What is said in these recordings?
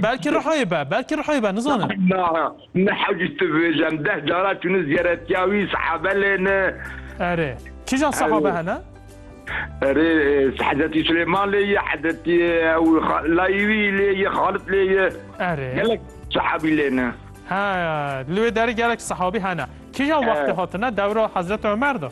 Belkî Rihoyê be, belkî Rihoyê be, nizanim. Na, ne hewcî tu vêjem, deh cara çûne ziyaretiya wî, sehabe lê ne. Erê, kîjan sehabe hene? Erê, Hezretî Silêman lê ye, Hezretî ew layî wî lê ye, Xalit lê ye. Erê. Gelek sehabî lê ne. He, li wê derê gelek sehabî hene. Kîjan wextê hatine, dewra Hezretî Omer de?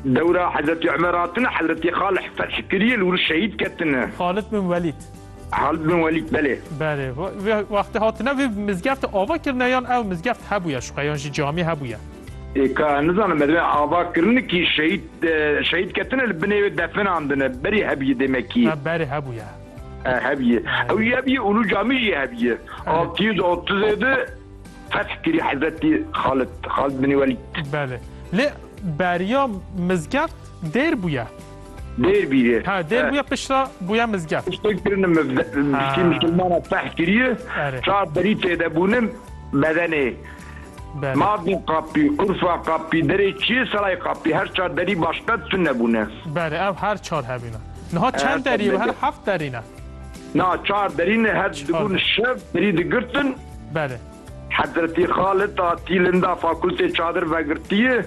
Dewra Hezretî Omer hatine, Hezretî Xalih feth kirî ye, li wir şehîd ketine. Xalit bin Welîd. Halid bin Welîd belê. Belê. Wextê hatine vê mizgeftê ava kirine yan ew mizgeft hebûye şiqe yan jî camî hebûye? Ka nizanim me divê ava kirin kî şehîd şehîd ketine li binê wê definandine berî hebîye dê me kî? Berê hebûye. Hebîye. Ew jî hebîye û nû camî jî hebîye. Altî yüz otuzê di feth kirî Hezretî Xalid Xalid binî Welîd. Belê. Lê beriya mizgeft dêr bûye. Dêr bîye. Ha dêr bûye piştre bûye mizgeft. Piştre kirine me piştî misilmana feh kiriye. Çar berî têde bûne bedenê. Mabin qapî, qurfa qapî, derê çiyê serayê qapî her çar derî başqet tune bûne. Belê ev her çar hebîne. Niha çend derî her heft derî ne. Na çar derî ne her dibûn şev derî digirtin. Belê. Hezretî Xalid a tî linda fakultê çadir vegirtiye.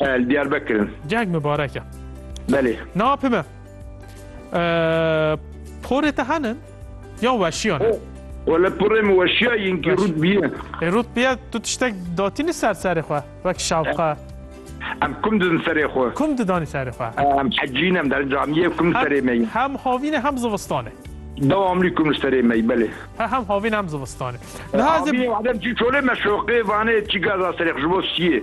E, li Diyarbekir in. Ceng mibarek e. Belê. Na pime. E, porê te henin? Ya weşiyan e. Wele porê min weşiya yin ki Weş. rût biye. E, rût biye tu tiştek datînî ser serê xwe. Wek şapka. Em kum didin serê xwe. Kum didanî serê xwe. E, Em hecîn em der camiyê kum serê me yin. Hem havîn e hem zivistan e. Dewamlî kum li serê me yî belê. He hem havîn hem zivistan e. Niha ez ê Havînê wadem çî çolê me şoqê vanê çî gaza serê xwe ji bo siyê.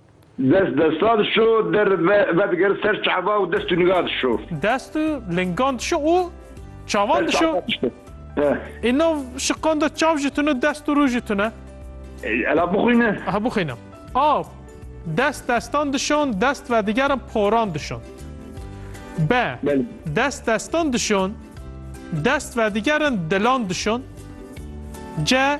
Dest desta dişo, der vedigir, ser çava û dest û niga dişo. Dest û lingan dişo û çavan dişo. Îno şiqanda çav jî tune, dest û rû jî tune. Ela bixwîne. Aha bixwîne. A. Dest destan dişon, dest vedigerin poran dişon. B. Dest destan dişon, dest vedigerin dilan dişon. C.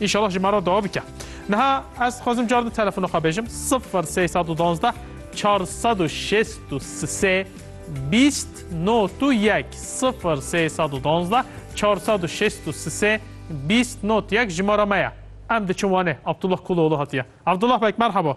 Înşallah ji me re dawa bike. Niha ez dixwazim car di telefona xwe bêjim sifir sey sed û duwazdeh çar sed û şêst û sê bîst not û yek sifir sey sed û duwazdeh çar sed û şêst û sê bîst not yek jimara me ye. Em diçin Wanê. Abdullah Kuloğlu hatiye. Abdullah bek merhaba.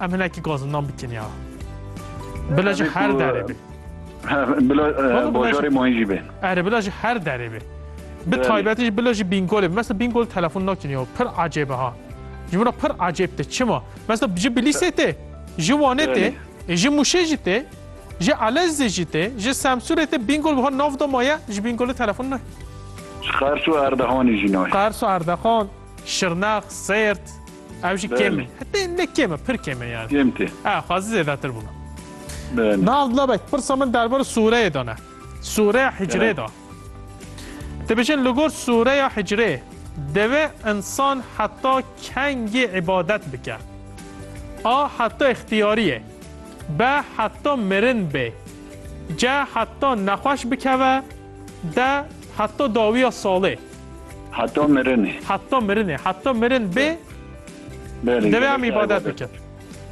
Em hinekî gazindan bikin ya. Bila ji her derê bê. Bila bajarê mayî jî bê. Erê bila ji her derê bê. Bi taybetî jî bila jî bîngolê. Mesela bîngol telefon nakin ya. Pir ecêb e ha. Ji min re pir ecêb te. Çima? Mesela ji Bilîsê tê, ji Wanê tê, ji Mûşê jî tê, ji Elezê jî tê, ji Semsûrê tê bîngol wiha nav da maye ji bîngolê telefon nayê. Ji Qers û Erdehanê jî nayê. Qers û Erdehan, Şirnex, Sêrt. Ew jî kêm e. Hetê ne kêm e, pir kêm e yani. Kêm tê. Ha, xwazî zêdetir bûna. Belê. Naz Lebek, pirsa min derbarê sûreyê de ne. Sûreya hicrê Evet. de. Dibêjin li gor sûreya hicrê divê insan heta kengê îbadet bike. A heta îxtiyarî ye. B heta mirin bê. C heta nexweş bikeve De heta dawiya salê. Heta mirinê. Heta mirinê. Heta mirin bê. Belê. Divê em îbadet bikin.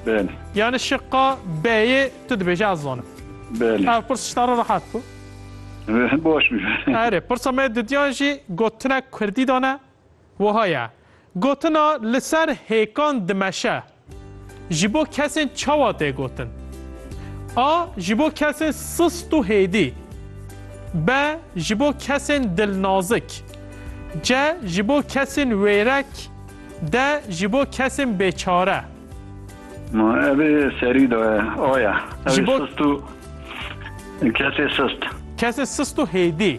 Belê. Yani şiqa B'yê tu dibêje ez zanim. Belê. Ev pirs tişta re rehat bû. Baş bû. Erê, pirsa me didiyan jî gotinek Kurdî dane. Wiha ye, Gotina li ser hêkan dimeşe ji bo kesên çawa tê gotin? A. Ji bo kesên sist û hêdî B. Ji bo kesên dilnazik C. Ji bo kesên wêrek D. Ji bo kesên bêçare. Ma ev ê serî de A ye. Ew Ji ê bo- sist û kesê sist. Kesê sist û hêdî.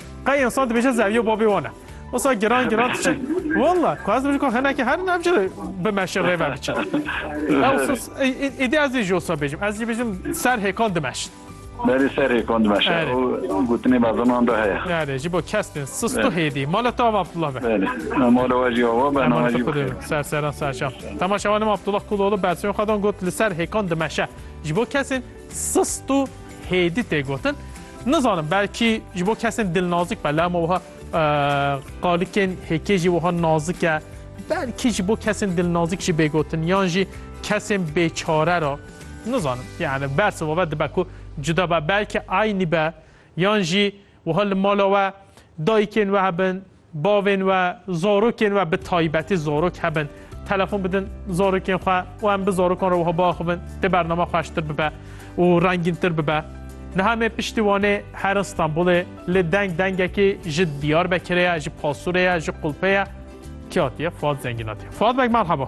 Qey insan dibêje zeviyo babê wan e. Wisa giran giran diçe. Walla ku ez dibêjim ku hinekî herin ev jî bi meşe rê ve biçe. Êdî ez jî ji wisa bêjim. Ez jî bêjim ser hêkan dimeşin. Berê ser hêkan dimeşin. Ew gotinê bazanan de heye. Erê ji bo kes tên. Sisto hêdî. Mala te ava Abdullah be. Berê. Mala we jî ava be. Mala te kudu. Ser seran serşan. Temaşevanê me Abdullah Kuloğlu bersivên xwe dan got li ser hêkan dimeşe. Ji bo kesên Sist û hêdî tê gotin. Nizanim belkî ji bo kesên dilnazik be lama wiha qalikên hêkê jî wiha nazik e. Belkî ji bo kesên dilnazik jî bê gotin yan jî kesên bêçare re. Nizanim yani bersiva ve dibe ku cuda be belkî aynî be yan jî wiha li mala we dayikên we hebin Bavên we, zarokên we bi taybetî zarok hebin, telefon bidin zarokên xwe û em bi zarokan re wiha biaxivin dê bername xweştir bibe û rengîntir bibe. Niha me piştî Wanê herin Stenbolê lê deng dengekî ji Diyarbekirê ye, ji Pasurê ye, ji Qulpê ye. Kê hatiye? Fuad Zengîn hatiye. Fuad beg merhaba.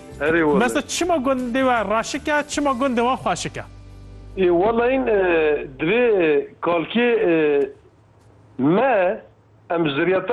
Herê wele. Mesa çima gundê we raşik e, çima gundê wan xweşik e? Ê wele in divê kalkê me em ziryeta